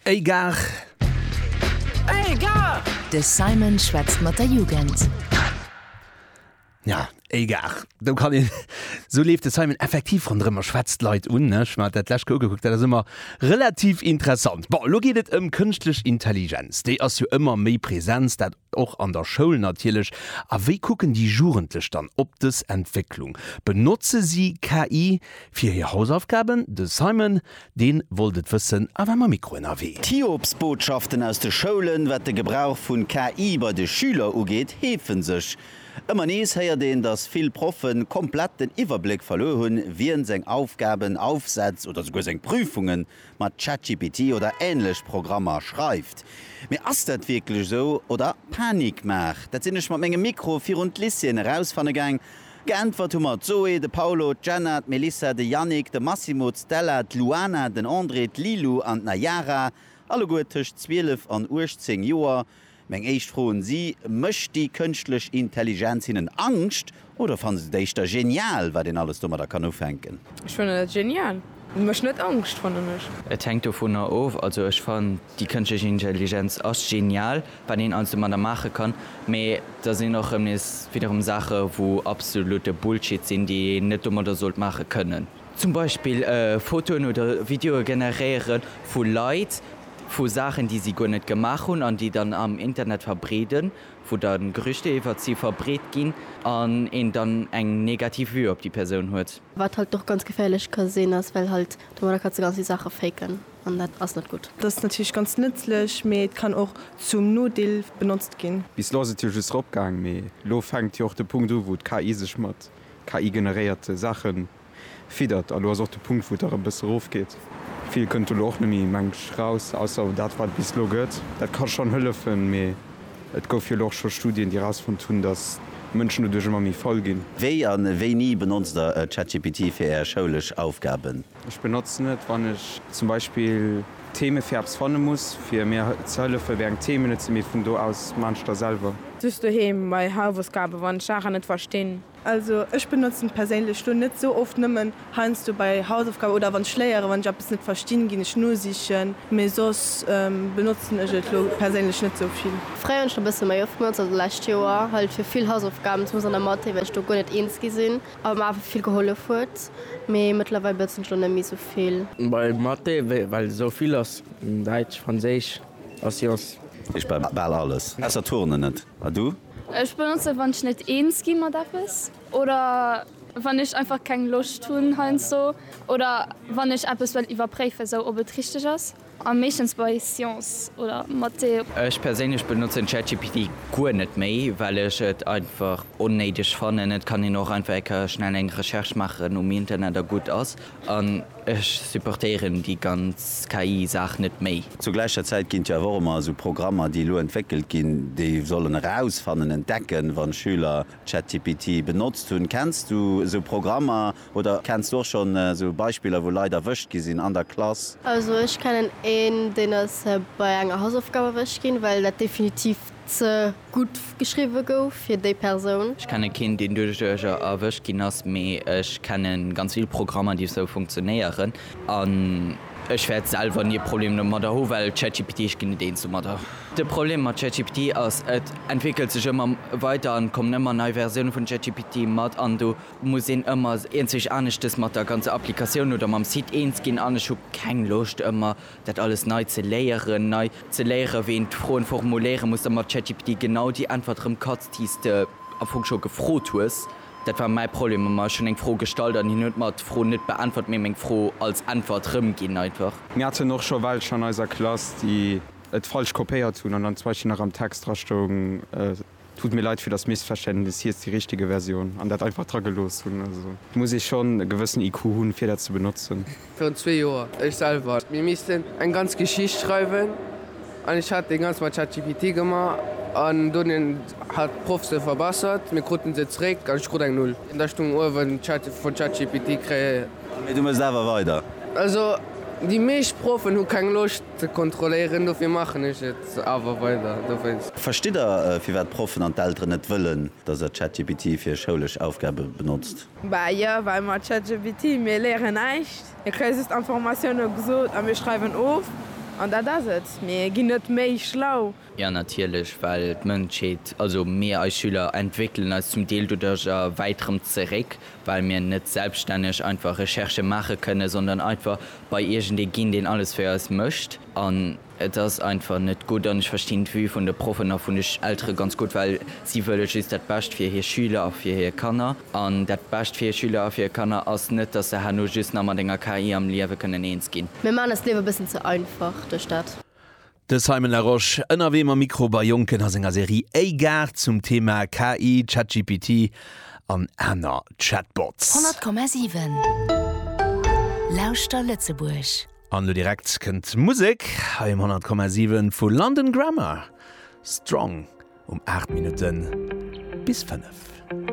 Ey Gare! Ey Gare! De Simon schwätzt mat der Jugend. Ja, ey Gare! Do kann een, sou leeft de Simon effektiv ronderëm a schwätzt d'Leit un. Ech hu mer dat d'lescht Kou ugekuckt, dat ass ëmmer relativ interessant. Bon, elo geet et ëm kënschtlech Intelligenz. Déi ass jo ëmmer méi Präsenz, dat och an der Schoul natierlech. A wéi kucken déi Jugendlech dann op dës Entwécklung? Benotze si KI Fir hir Hausaufgaben, de Simon, deen wollt et wëssen a war mam Mikro ënnerwee. D'Hiobsbotschaften aus de Schoulen, wat de Gebrauch vun KI bei de Schüler ugeet, heefen sech. Ëmmer nees héiert een, dass vill Proffen komplett den Iwwerbléck verluer hunn, wien seng Aufgaben, Aufsätz oder souguer seng Prüfungen mat ChatGPT oder ähnlech Programmer schreift. Mee ass dat wierklech esou oder Panikmaach? Dat sinn ech mat mengem Mikro virun d'Lycéeën erausfanne gaang. Geäntwert hu mer d'Zoé, de Paulo, d'Jenna, d'Melissa, de Yannick, de Massimo, d'Stella, d'Luana, den André, d'Lilou an d'Nayara, alleguer tëscht 12 an 18 Joer. Meng éischt Fro un si, Mécht déi kënschtlech Intelligenz hinnen Angscht oder fanne se et éischter genial, wat een alles domadder kann ufänken? Ech fannen dat genial. Mécht net Angscht, fannen ech. Et hänkt dovunner of. Also ech fannen déi kënschtlech Intelligenz ass genial, wat een alles domadder maache kann, mee da sinn och rëm nees widderem Saache wou absolute Bullshit sinn, déi een net domadder sollt maache kënnen. Zum Beispill Fotoen oder Videoe generéiere vu Leit, vu Saachen déi si guer net gemaach hunn, an déi dann am Internet verbreeden, wou dann Gerüchte iwwert si verbreet ginn an een dann eng negativ Vue op déi Persoun huet. Wat halt och ganz geféierlech ka sinn ass, well halt domadder kanns de ganz vill Saache faken an dat ass net gutt. Dass natierlech ganz nëtzlech, mee et kann och zum Nodeel benotzt ginn. Bis lo ass et jo just rop gaang, mee lo fänkt jo och de Punkt u wou d'KI sech mat KI generéierte Saache fiddert a lo ass och de Punkt wou et erëm bësse rof geet. Vill kënnt do lo och net méi mengt ech raus, ausser dat wat et bis lo gëtt. Dat ka schonn hëllefen, mee. Et gouf jo elo och scho Studien, déi erausfonnt hunn, datt d'Mënschen doduerch ëmmer méi faul ginn. Wéi a wéini benotzt der ChatGPT fir Är schoulesch Aufgaben? Ech benotzen et, wann ech zum Beispill Theme fir eppes fanne muss, fir mir ze hëllefen, wéi eng Themen et sinn, mee vun do aus maachen ech da selwer. Just doheem bei Hausaufgaben, wann ech Saachen net verstinn. Also ech benotzen perséinlech lo net sou oft, nëmmen heiansdo bei Hausaufgaben oder wann ech léieren, wann ech eppes net verstinn ginn ech nosichen, mee soss benotzen ech et lo perséinlech net sou vill. Fréier hunn ech et e bësse méi oft benotzt, also d'lescht Joer halt fir vill Hausaufgaben, zumindest an der Mathé, well ech do guer net eens gi sinn a mer awer vill gehollef huet, mee mëttlerweil benotzen ech et lo net méi sou vill. Bei Mathé well et sou vill ass, Däitsch, Franséisch a Sciences. Ech bei bal alles ausser Turnen net. A du? Ech benotzen wann ech net eens gi mat eppes oder wann ech einfach keng Loscht hunn heiansdo oder wann ech eppes wëll iwwerpréifen sou ob et richteg ass a meeschtens bei Science oder Mathé. Ech perséinlech benotzen ChatGPT guer net méi well ech et einfach onnéideg fannen. Et kann een och einfach eng Kéier schnell eng Recherche maachen um Internet a gutt ass. Ech supportéieren déi ganz KI Saach net méi. Zur gläicher Zäit ginn et jo awer och ëmmer esou Programmer, déi elo entwéckelt ginn, déi sollen erausfannen, entdecken, wann d'Schüler ChatGPT benotzt hunn. Kenns du esou Programmer oder kenns du och schonn esou Beispiller, wou Leit erwëscht gi sinn an der Klass? Also ech kennen een, deen ass bei enger Hausaufgab erwëscht ginn, well dat definitiv ze gutt geschriwwe gouf fir déi Persoun. Ech kenne keen deen duerch Duercher erwëscht ginn ass, mee ech kenne ganz vill Programmer déi esou funktionéieren an ech wäert selwer ni e Problem domadder hu well ChatGPT, ech ginn net eens domadder. De Problem mat ChatGPT ass, et entwéckelt sech ëmmer weider an et kommen ëmmer nei Versioune vun ChatGPT mat an do muss een ëmmer eenzeg aneschtes mat der ganzer Applikatioun oder mam Site eens ginn an ech hu keng Loscht ëmmer dat alles nei ze léieren, nei ze léieren, wéi een d'Froen formuléieren muss, da mat ChatGPT genau déi Äntwert erëm katz, déi s de am Fong scho gefrot hues. Dat war mäi Problem ëmmer, ech hunn eng Fro gestallt an hien huet mer d'Fro net beäntwert, mee meng Fro als Äntwert rëmginn einfach. Mir haten och scho welch an eiser Klass, déi et falsch kopéiert hunn an dann zum Beispill nach am Text dra stoung, Tut mir leid fir das Missverständnis, hie ist die richtige Version an dat einfach dra gelooss hunn. Also muss ee schonn e gewëssen IQ hunn, fir dat ze benotzen. Virun zwee Joer, ech selwer. Mir missten eng ganz Geschicht schreiwen an ech hat dee ganz mat ChatGPT gemaach an dunn hat d'Proff se verbessert. Mir kruten se zréck an ech krut eng Null. Da stung uewen vun ChatGPT kréien. Mee du mës awer weider. Also déi meescht Proffen hu keng Loscht. Ze kontrolléieren, dofir maachen ech et awer weider. Verstitt der, firwat d'Proffen an d'Elteren net wëllen, dass der ChatGPT fir schoulesch Aufgabe benotzt? Bah jo, well mat ChatGPT, mir léieren näischt. Mir kréie just Informatiounen gesot a mir schreiwen of an dat ass et. Mir ginn net méi schlau. Jo natierlech, well d'Mënschheet, also mir eis Schüler, entwéckelen eis zum Deel doduerch a wäit rëm zeréck, well mir net selbststänneg einfach Recherchë maache kënnen, sondern einfach bei iergendee ginn, deen alles fir eis mécht. An et ass einfach net gutt. An ech verstinn d'Vue vun de Proffen a vun de Eltere ganz gutt, well si wëlle just dat Bescht fir hir Schüler a fir hir Kanner. An dat Bescht fir hir Schüler a fir hir Kanner ass net, dass se herno just nach mat enger KI am Liewe kënnen eens ginn. Mir maachen eis d'Liewe e bëssen ze einfach duerch dat. De Simon Larosche, ënnerwee mam Mikro bei Jonken a senger Serie Eygar zum Thema KI, ChatGPT an aner Chatbots. 100,7 Lauschter Lëtzebuerg! An elo direkt kënnt d'Musek hei um 100,7 vu London Grammar, Strong um 8 Minutte bis 5.